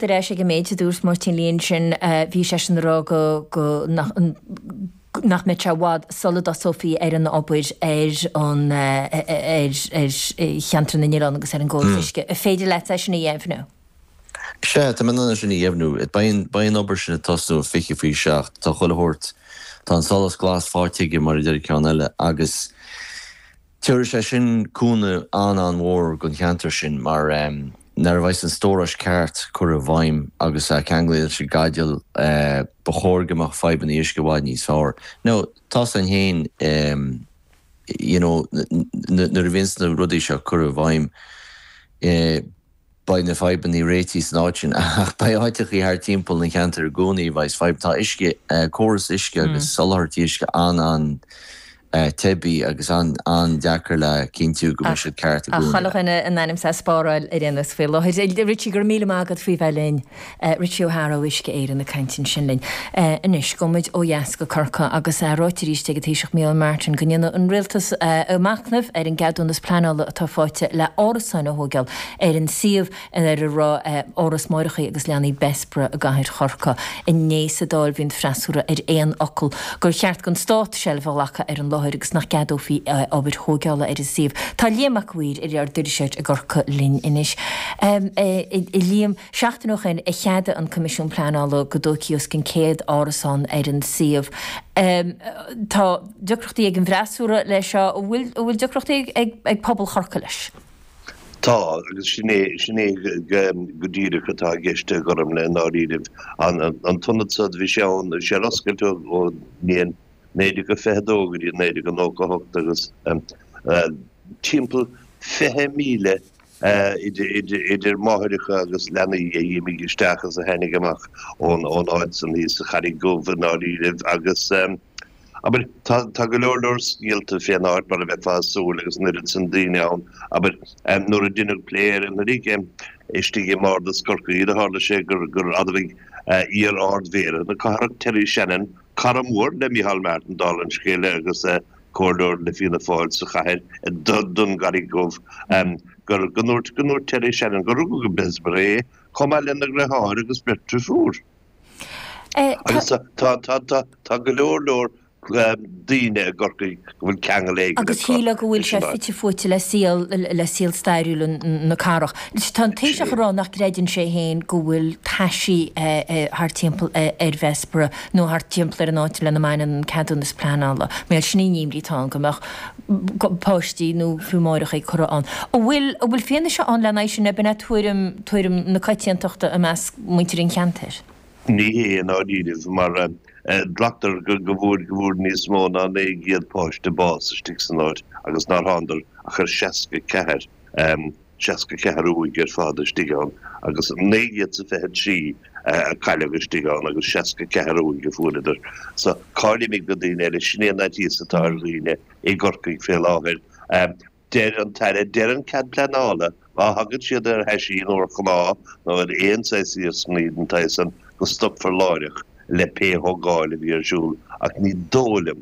ar ais ag an méid a dúirt Máirtín Lee ansin, bhí seisean ag rá go nach mbeadh sé i bhfad sula dtosófaí ar an obair ar Cheantar na nOileán agus ar an gcóras uisce. An féidir leat é sin a dheimhniú? Sea, tá mé in ann é sin a dheimhniú. Beidh an obair sin ag tosnú i fiche fiche seacht. Tá chuile shórt, tá an solas glas fáighte aige, mar a deir an ceann eile, agus. Tabharfaidh sé sin cúnamh an-an-mhór don cheantar sin mar nuair a bheas an stóras ceart curtha i bhfeidhm agus ceangal leis an Spidéal, ba chóir go mbeadh fadhbanna uisce i bhfad níos fearr. Now, tá sin féin, you know, nuair a bhíonns na rudaí seo curtha i bhfeidhm. Beidh na fadhbanna réitithe san áit sin, ach beidh áiteachaí thart timpeall na gceantar i gcónaí a bheas fadhb. Tá uisce, córas uisce agus soláthairtí uisce an-an-teibí agus an-an-deacair le cinntiú go mbeidh siad ceart i gcónaí. Chuile dhuine in ainm's é a spáráil ar aon nós faoi láthair. Richie, go raibh míle maith agat faoi bheith linn. Richie O'Hara ó Uisce Éireann ag caint ansin linn. Anois, gabhaimid ó dheas go Corcaigh agus ráite arís ag an Taoiseach Micheál Martin go ndéanfaidh an Rialtas a mhacnamh ar an gceadúnas pleanála atá faighte le hárasáin a thóigeáil ar an suíomh ar a raibh Áras Máithreacha agus Leanaí Bessborough i gCathair Chorcaí. Inné sa Dáil bhí an freasúra ar aon fhocal gur cheart don Stát seilbh a ghlacadh ar an láthair agus nach gceadófaí obair thóigeála ar an suíomh. Tá Liam Mac Uidhir ár dtuairisceoir i gCorcaigh linn anois. Liam. Seachtain ó shin a cheadaigh an Coimisiún Pleanála go dtógfaí os cionn 100 árasán ar an suíomh. Tá deacrachtaí ag an bhfreasúra leis seo, an bhfuil deacrachtaí ag pobal Chorcaí leis? Tá, agus sin é go díreach atá i gceist agam i ndáiríribh. An t-ionad so, bhí sé ann, bhí sé ar oscailt ón mbliain 1922 go dtí 1998 agus timpeall 20,000 idir máithreacha agus leanaí a d'imigh isteach is a tháinig amach ón áit san thíos sa Charraig Dhubh i ndáiríribh, agus, abair, tá go leor leor scéalta fén áit mar a bheifeá a' súil agus an oiread san daoine ann, abair, nuair a deineadh plé ar an ní seo istigh i mBardas Corcaí do thárla sé gur, gur admhaigh iar-Ard-Mhéara na cathrach Terry Shannon, cara mór le Micheál Martin dála an scéil agus comhairleoir le Fianna Fáil sa chathair don gCarraig Dhubh, gur ndúirt Terry Shannon gur rugadh i mBessborough é, chomh maith lena dhriotháir agus beirt deirfiúr. Agus tá go leor leor daoine i gCorcaigh go bhfuil ceangal éigin acu leis an áit. Agus shílfeá go bhfuil sé fite fuaite le saol stairiúil na cathrach. Tá an Taoiseach ag rá nach gcreideann sé féin go bhfuil taisí thart timpeall ar Bhessborough. nó thart timpeall ar an áit lena mbaineann an ceadúnas pleanála, más ea, sin é an imní atá ann go mbeadh páistí nó fiú máithreacha curtha ann. An bhfuil fianaise ann leis sin, nó b'in é tuairim, tuairim na coitiantachta i measc muintir an cheantair? Ní hea, i ndáiríribh, mar glactar go bhfuair, go bhfuair níos mó ná naoi gcéad páiste bás istigh san áit agus nár thángadar ach ar seasca ceathair. 64 uaigh ar fad istigh ann agus 923 a cailleadh istigh ann agus 64 uaigh a fuaireadar. So, cá bhfuilid na daoine eile, sin é an faitíos atá ar dhaoine i gCorcaigh fé láthair. Deir an tAire, deir an Cead Pleanála, má thagann siad ar aon chnámh nó ar aon saghas iarsmaí den saghas san, go stopfar láithreach le pé thógáil a bheidh ar siúl ach ní dóigh liom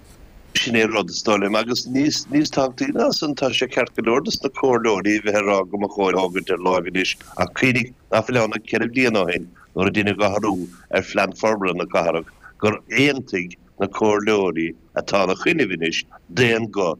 Sin é an rud, is dóigh liom, agus níos tábhachtaí ná san, tá sé ceart go leor do na comhairleoirí a bheith ag rá go mba chóir é a fhágaint ar lár anois ach cuimhnigh nach bhfuil ann ach ceithre bliana ó shin nuair a deineadh athrú ar phlean forbartha na cathrach gur aontaigh na comhairleoirí atá ina choinne anois d'aon guth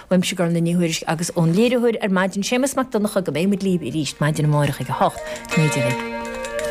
Uaimse, Gormfhlaith Ní Thuairisg agus ón léiritheoir ar maidin, Séamus Mac Donnchadha, go mbeidh muid libh arís maidin amárach ag a hocht. Go n-éirí libh.